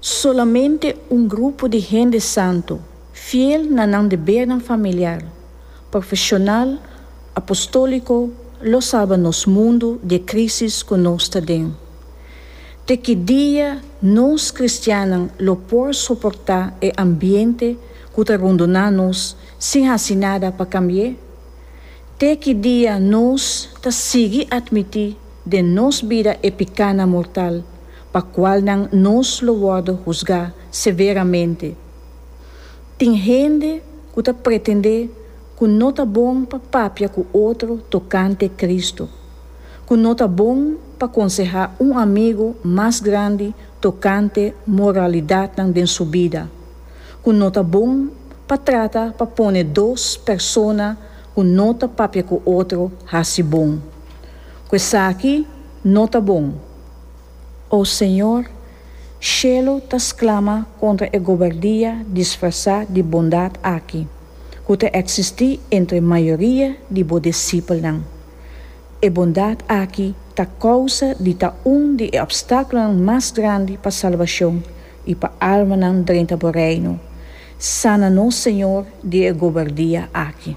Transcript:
Solamente un grupo di hende santu, fiel na nan debernan familiar, profesional, apostoliko, lo salba nos mundu di e crisis cu nos ta den. Te ki dia nos cristiannan lo por soporta e ambiente cu ta rondona nos sin haci nada pa cambi'e? Te ki dia nos ta sigui admiti den nos bida e picanan mortal pa cual nan nos lo worde husga severamente. Tin hende cu ta pretende cu no ta bon pa papia cu otro tocante Cristo, cu no ta bon pa conseha un amigo mas grandi tocante moralidadnan den su bida, cu no ta bon pa trata pa pone dos persona cu no ta papia cu otro haci bon. Cu esaki no ta bon. O Señor, shelu ta sklama kontra e gobardia disfrasá di bondat aki ku ta eksistí entre mayoria di bo disipelnan. E bondat aki ta kousa di ta un di e opstákulonan mas grandi pa salbashon i pa almanan drenta bo Reino. Sana nos, Señor, di e gobardia aki.